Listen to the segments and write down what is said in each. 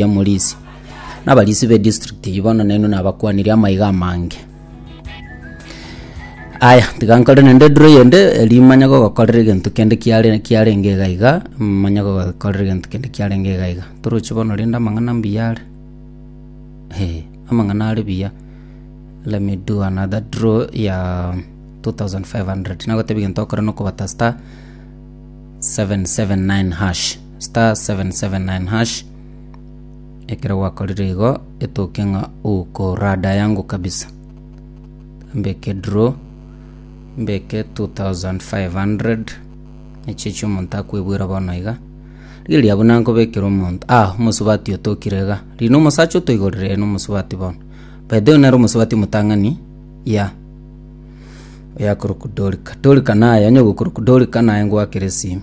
y'omorisi, na abarisi b'edistrict eyio bono nainwe nabakwanirie amaiga amange. Aya, tiga nkore naende ediro eyende, erio manye gogokorera egento kende kiare- kiarenge iga iga, manye gogokorera egento kende kiarenge iga iga. Toroche bono rende amang'ana mbuya are, eh, amang'ana are buya. Let me do another draw ya 2500, nagotebia egento okore na okobata star 779#. star 779#, ekero gwakorire igo etoke ng'a ukorada yangu kabisa. Mbeke draw, mbeke 2500, echi echi omonto akwebwera bono iga. Riria buna nkobekera omonto, ah omosubati otokire iga, riria na omosacha otoigorire ere na omosubati bono. By the way nere omosubati omotang'ani, yeah. Oyo akorokwa Dorika, Dorika naye, onye ogokoroku Dorika naye ngwakere esimi.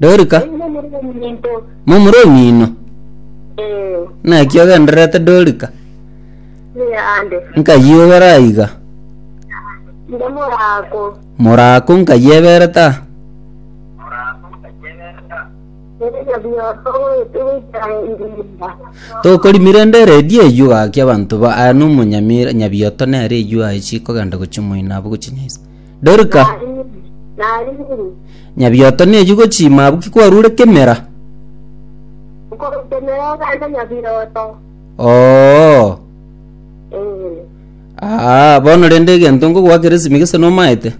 Dorika, Eri momura ominto. momura omino. Eh, Naki ogendererete Dorika, eh, ande. nkayioyora aiga. Nde morako. Morako nkayeberete aa. Erega bioto goete goikera ebirinda. Tokorimire ende eredio eyio gaki abanto ba aya nomonyamira nyabioto nere eyio aye chikogenda gochimoina abo gochinyaisa. Dorika, nyabioto nechi gochima abwo ki kwarure kemera? Oo. Aa, bono rende egento nkogoa keresimi gese nomaete?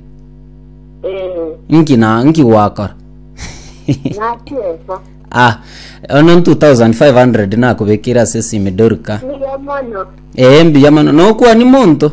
Nki na nki gwakora? ah, ono 2500 nakobekire ase esimi Dorika. Ee, mbuya mono. Nokwani monto?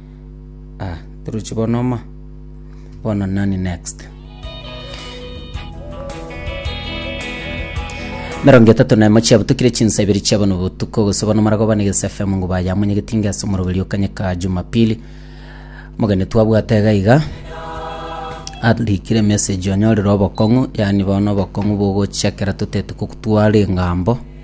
Ah, torochi bono oma, bono nani next? Emerongo etato na emo chiabutukire chinsa ibere chia bono botuko gose bono marago bane gese FM ngo bayamonye getinga ase omoroberi okanyeka Jumapili mogeni twabwate iga iga arikire message onyorire obokong'u yani bono obokong'u bogochia ekero totaete gokutwara engambo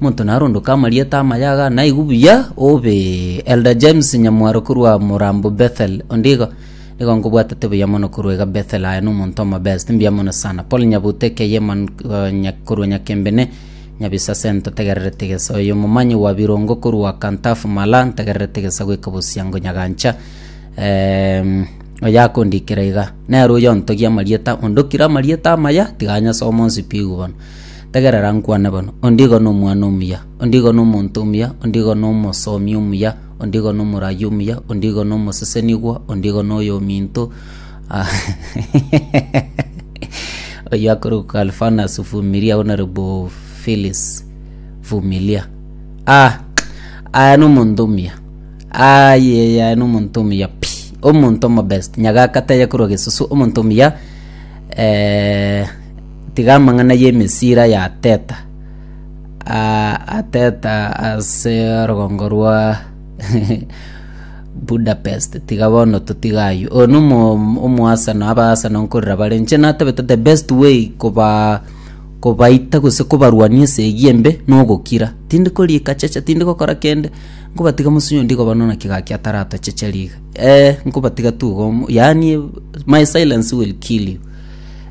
Monto narondoke amarieta amayaga, naigwe buya obe Elder James Nyamwaro korwa Morambo Bethel. Onde igo, nigo nkobwatete buya mono korwa iga Bethel aye na omonto omo best. Mbuya mono sana. Paul Nyabute keye man, eh, nya, korwa Nyakembene. Nyabisase ntotegererete gesa. Oyo momanyi wa Birongo korwa Kantafu Mala ntegererete gesa goika Bosiango Nyagancha. Em, oyo akondikera iga. Nere oyo ontogia amarieta, ondokire amarieta amaya, tiga anyase omonsipi igwe bono. Tegerera nkwane bono. Onde igo nomwana omuya, onde igo nomonto omuya, onde igo nomosomi omuya, onde igo nomorayi omuya, onde igo nomosesenigwa, onde igo noyominto, ah, oyio akorokwa Kalfanas Vumilia, bono ore boo Philis Vumilia. Ah, aya nomonto omuya. Aye, aya nomonto omuya pi. Omonto omobest, nyagaka tayakorwa gesusu, omonto omuya, eh, Tiga amang'ana y'emesira ya Teta ah, ateta ase orogongo rwa Budapest tiga bono totiga aywo oyo no omoasano abaasano nkorera bare nche natabete the best way koba kobaita gose kobarwania esegi embe nogokira tindi korika cheche tindi gokora kende nkobatiga mosinyo ndigo bono naki gaki ataratochecheria iga eh nkobatiga tu igo yaani my silence will kill you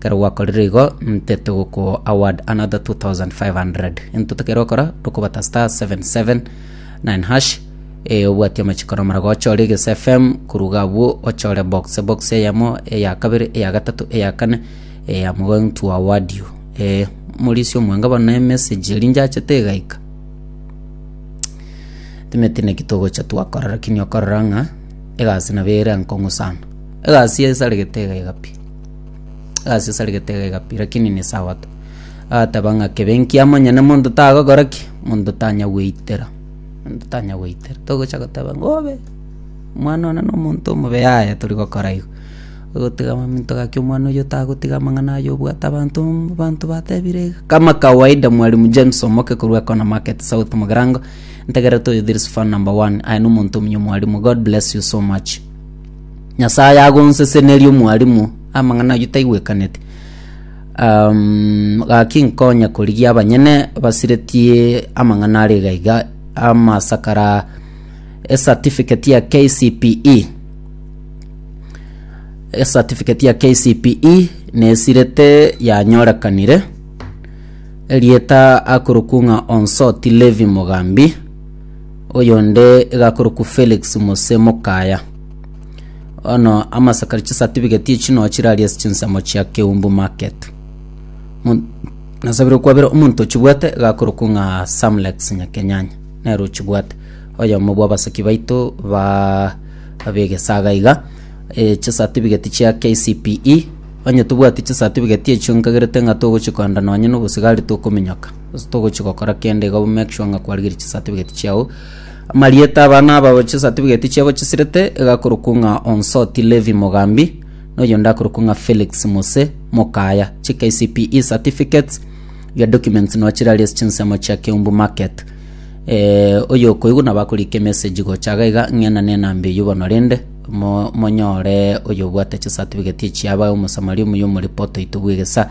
Kero gwakorire igo, nte togokwo award another 2500. Into tokeire gokora, tokobata star 779 hash. E, obwati amachiko nomara gocha ore Ges FM, koruga abwo ochore box. Box eyemo, eya kabere, eya gatato, eya kane, e, I'm going to award you. E, morisi omwanga bono emessage eri njachete egaika. Timeti neki togocha twakora lakini okorora ng'a egasi nabo ere enkongu sana. Egasi esaregete egaiga pi. Gasi sari getega igapi, lakini ni sabato. Agateba ng'a kebe nkiamo onye na monto tagokora ki, monto tanya gweitera. Monto tanya gweitera. Togocha goteba ng'a obe, omwana one na omonto omobe yaya tori gokora igo. Ogotiga momento gaki omwana oyio tagotiga amang'ana aye obwate abanto abanto batebire iga. Kama kawaida mwalimu James Omoke korwa Ekona Market South Mugirango, ntagera toyo this is fan number one. Aye na omonto omuya omwalimu. God bless you so much. Nyasae agonseseneria omwalimu, amang'ana ayio taigwekaneti. Um, gaki nkonya korigia abanyene basiretie amang'ana are iga iga amasakara ecertificate ya KCPE ecertificate ya KCPE nesirete yanyorekanire erieta akorokung'a Onsoti Levi Mogambi Oyonde gakorokwa Felix Mose Mokaya. Ono amasakari chisatifigeti echi no chiraria ase chinsemo chia Keumbu Market. Mon- Nasabire kwabera omonto ochibwate gakorokwa ng'a Samlex Nyakenyanya. Nero ochibwate. Oyomo bwa basaki baito ba abegesaga iga. Eh, chisatifigeti chia KCPE. Onye tobwati chisatifigeti echio nkagerete ng'a togochikondana onye nobosigari tokominyoka. Gose togochi gokora kende iga make sure ng'a kwarigeria chisatifigeti chiao amarieta abana aba chisatifigeti chiabo chisirete igakorokwa ng'a onsoti levi mogambi noyo ndakorokwa ng'a felix mose mokaya chi kcpe certificates iga documents nochirari ase chinsemo chia keumbu market eh, oyo okoigwa nabo akorika emessage gocha iga iga ng'ena na enamba eyio bono rende mo- monyore oyo obwate chisatifigeti echiaba omosamari omuya omoreport oito bw'egesa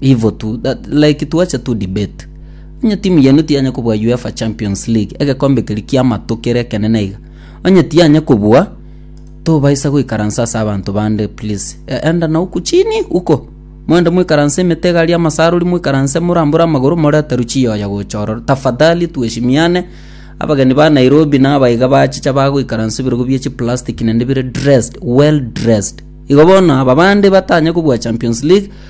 Ivo tu that like twacha to debate. Onye timu yenu tiyanya kobua UEFA Champions League, egekombe keria kiamato kere ekenene iga. Onye tiyanya kobua, tobaisa goikaransa ase abanto bande please. E, enda na uko chini uko. Moende moikaranse emete iga aria amasarori moikaranse morambore amagoro morete ruchii oya gocha ororo. Tafadhali tuheshimiane. Abageni ba Nairobi na abaiga bachicha bagoikaransa ebirogo bie chiplastic nende bire dressed, well dressed. Igo bono aba bande batanya kobua Champions League